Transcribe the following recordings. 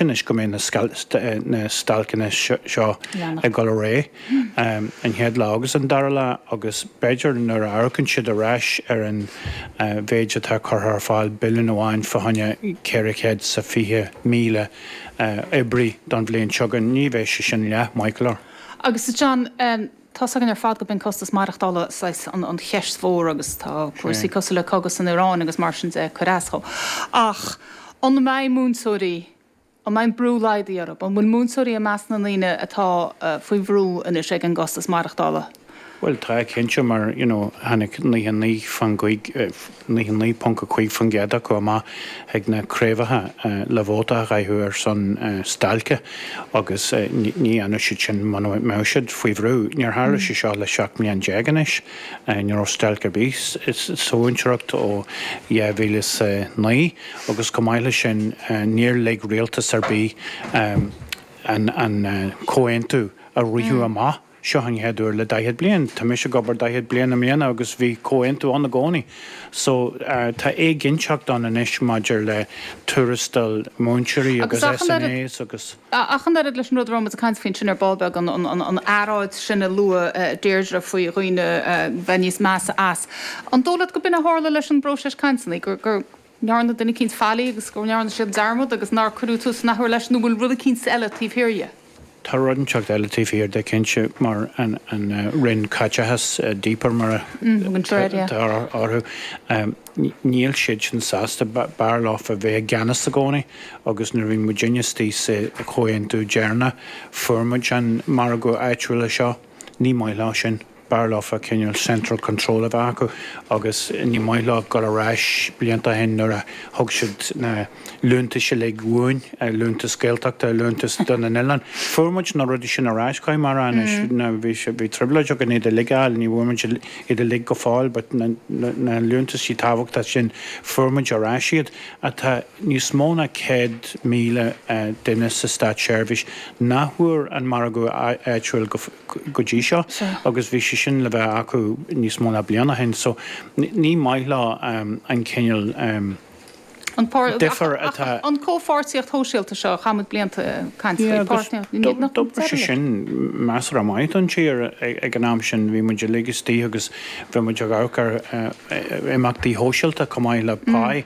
Anois go mbeidh na stailceanna seo ag dul ar aghaidh, an chéad lá agus an dara lá, agus b'fhéidir nuair a amharcann siad ar ais ar an mhéid atá curtha ar fáil, billiún amháin faoi choinne 400 is 20,000 oibrí don bhliain seo chugainn, ní bheidh sé sin leath maith go leor. Agus a John, Tá's againn ar fad go b'in costas maireachtála saghas an cheist mhór agus tá cúrsaí cosúil le cogadh san Ioráin agus mar sin de ag cuir as dhó. Ach an mbeidh múinteoirí, an mbeidh an brú laghdaithe orthu? An bhfuil múinteoirí i measc na ndaoine atá faoi bhrú anois ag an gcostas maireachtála? Bhuel, tá cinnte mar, you know, tháinig 99 faoin gcéad, 99.5% acu amach chuig na craobhacha le vóta a chaitheamh ar son stailce agus ní dhéanfadh siad sin muna mbeadh siad faoi bhrú. Níor tharla sé seo le 17 mbliain anois, ní raibh stailc ar bith sa mhúinteoireacht ó 2009 agus chomh maith leis sin níor lig rialtas ar bith an comhaontú a rith amach. Seo an chéad uair le daichead bliain. Tá mise ag obair daichead bliain i mbliana agus bhí comhaontú ann i gcónaí. So tá éiginnteacht ann anois maidir le tuarastail múinteoirí agus SNAs agus. Ach an oiread leis an rud a raibh muid ag caint faoi ansin ar ball beag, an earráid sin a luaigh Deirdre faoi dhaoine bheith níos measa as, an dóigh leat gur b'in a tharla leis an bpróiseas cainteanna, gur. ndearna duine eicínt faillí agus go ndearna siad dearmad agus nár cuireadh tús an athuair leis, nó an bhfuil rud eicínt eile taobh thiar dhe? Tá rud inteacht eile taobh thiar de, cinnte, mar an Roinn Caiteachais, DPER, mar a thugtar orthu. Níl siadsan sásta, b'fhearr leo a bheith i gceannas i gcónaí, agus nuair a bhí muid istigh sa chomhaontú deireanach, fuair muid an margadh áitiúil seo. Ní maith leo sin. B'fhearr leofa cineál central control a bheith acu agus ní maith leo dul ar ais blianta ó shin nuair a thug siad na liúntaisí uilig uainn, liúntas Gaeltachta, liúntas do na n-oileáin. Fuair muid na rudaí sin ar ais, caithfidh mé a rá anois. Bhí trioblóid againn iad uilig a fháil, ní bhfuair muid iad uilig go fóill but na liúntaisí tábhachtacha sin, fuair muid ar ais iad. Tá níos mó ná 100,000 duine sa státseirbhís nach bhfuair an margadh áitiúil go. go dtí seo agus bhí sé sin le bheith acu níos mó ná bliain ó shin so ní maith leo an cineál difear atá. An comhpháirtíocht shóisialta seo, chaith muid blianta ag caint faoi, páirtnéireacht, níl muid ag deireadh leis. Sin measaim go raibh maith don tír ag an am sin, bhí muid uilig istigh agus bhí muid ag amharc ar imeachtaí sóisialta chomh maith le páí.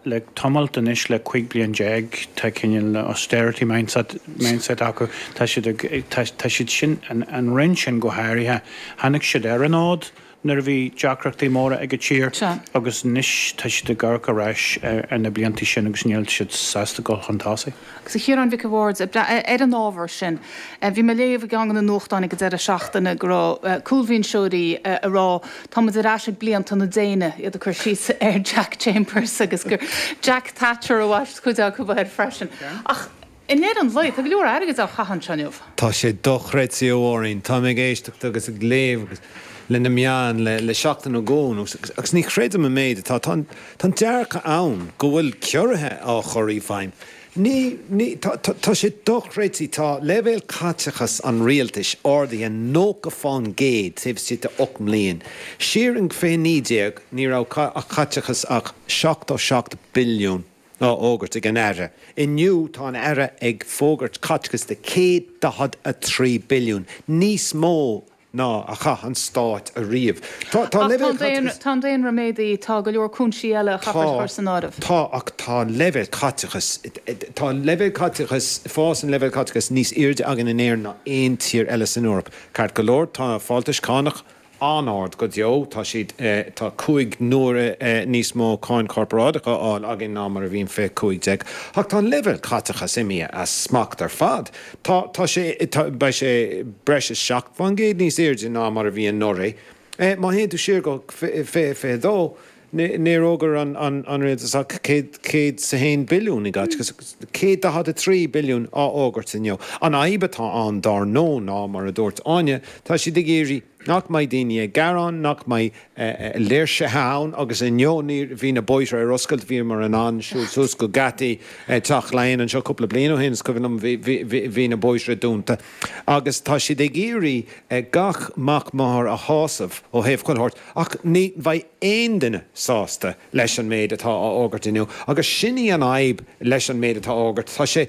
Le tamalt anois, le cuig bliain déag, tá cineál na austerity mindset acu. Tá siad ag tá tá siad sin an an roinn sin go háirithe, tháinig siad ar an fhód nuair a bhí deacrachtaí móra ag an tír agus anois tá siad ag amharc ar ais ar na blianta sin agus níl siad sásta dul chun tosaigh. Agus a Chiaráin Mhic a' Bhaird, ar an ábhar sin, bhí mé ag léamh i gceann de na nuachtáin ag an deireadh seachtaine go raibh cúlbhinseoirí ag rá táimid ar ais ag blianta na déine, iad ag cur síos ar Jack Chambers agus gur Jack Thatcher a bhaist cuid acu air freisin. Ach i ndeireadh an lae, tá go leor airgid á chaitheamh anseo inniu. Tá sé dochreidte a Mháirín, táim ag éisteacht agus ag léamh agus leis na meáin le seachtain nó dhó anuas agus ní chreidim an méid atá Tá an dearcadh ann go bhfuil ciorruithe á chur i bhfeidhm. Ní, ní, tá, tá, tá sé dochreidte, tá leibhéal caiteachas an rialtais ardaithe 90 fán gcéad taobh istigh de 8 mbliana. Siar in 2019 ní raibh ach caiteachas ach 77 billiún á fhógairt ag an Aire, inniu tá an Aire ag fógairt caiteachas de 143 billiún, níos mó! ná a chaith an stát ariamh. Tá an Ach tá leibhéal an daonra, caiteachais. tá an daonra méadaithe, tá go leor cúinsí eile a chaithfear a Tá, chur san áireamh. tá, ach tá an leibhéal caiteachais, tá an leibhéal caiteachais, fás an leibhéil caiteachais níos airde againn in Éirinn ná aon tír eile san Eoraip. Ceart go leor, tá fáltais cánach an-ard go deo, tá siad, tá cúig n-uaire níos mó cáin chorparáideach á fháil againn ná mar a bhí in fiche cúig déag, ach tá an leibhéal caiteachais imithe as smacht ar fad. Tá, tá sé, tá, beidh sé breis is seacht fán gcéad níos airde ná mar a bhí anuraidh. Eh, má théann tú siar go fi, fi, fiche fiche dó, ní, níor fhógair an, an, an rialtas ach céad, céad 's a haon billiún i gcait, agus céad daichead a trí billiún á fhógairt inniu. An fhadhb atá ann, dár ndó, ná, mar a dúirt Áine, tá siad ag iarraidh, nach mbeidh daoine ag gearán, nach mbeidh léirsithe ann agus inniu bhí na bóithre ar oscailt, bhíomar in ann siúl suas go geataí Teach Laighean anseo cúpla bliain ó shin, is cuimhin liom, bhí na bóithre dúnta agus tá siad ag iarraidh gach mac máthar a shásamh ó thaobh chuile shórt ach ní bheidh aon duine sásta leis an méid atá á fhógairt inniu agus sin í an fhadhb leis an méid atá á fhógairt, tá sé.